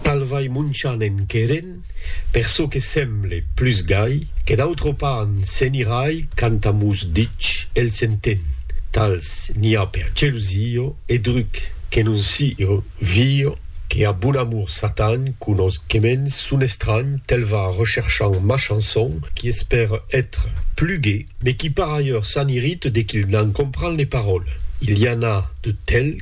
Tal vai Monchan en querent, per çò que semble, plus gai, que d'autre pan se'n irai quand amus dich el s'entén. Tals n'i a per gelusio e druc, que non sio vio que a bon amor Satan conos quements son estranh tel va recherchant Machanson qui espère etre plus gai, mais qui par ailleurs s'en irrite de qu'il n'en comprend les paroles. Il i en a de tels.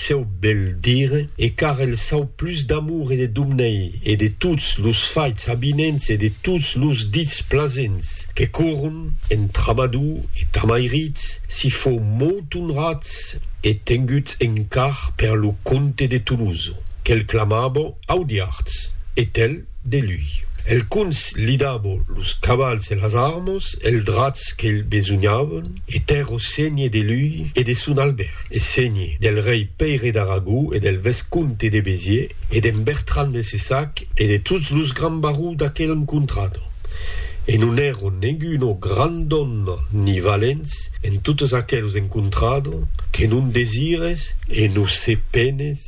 Cèu bèl dire, e car el sau plus d'amor e de Domnei, e de tots los faits avinents e de tots los dits plasents que corron en Tramadou e Tamairits, si fou molt onrats e tenguts en car per lo comte de Toloso, que'l clamava Audiards, e tel. de lui. El cons li dabo los cavals e las armas e els drats qu'elh besognavon, e tèrr o sègne de lui e de son Albèrt, e sègne del rei Pèire d'Aragó e del vescomte de Béziers e d'en Bertran de Cessac e de tots los grands barons d'aquel encontrado. E non èron neguno grand òme ni valents en totes aquelos encontrado que non desires e non se penes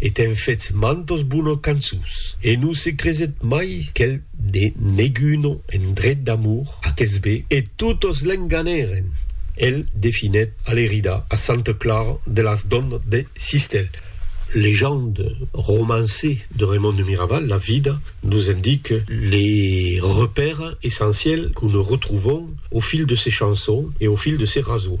e t'en fetz mantos bono cançus, e non se creset mai qu'el de neguno en dret d'amor aques be, e totos l'enganèren, el definèt a l'erida a Santa Clara de las Donas de Sistèl. Legende, romançe de Raimond de Miraval, la vida nos indique les repères essentiels que nos retrouvons au fil de ses chansons et au fil de ses raseaux.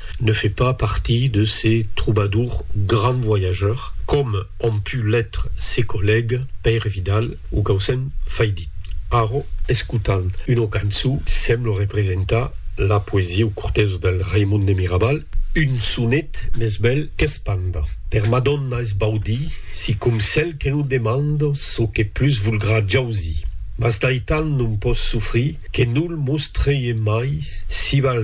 ne fait pas partie de ces troubadours grands voyageurs, comme ont pu l'être ses collègues Pèire Vidal o Gaucin Faidit. Arro, escotant una cançó, semble representar la poesia o cortesa del Raimon de Mirabal, un sonet mès bèl qu'espanda. Per Madonna es baudi, sicom cèl que non demanda çò que plus volgrà jausir. Mas d'aital non pòs sofrir que nul mos trèie mai si val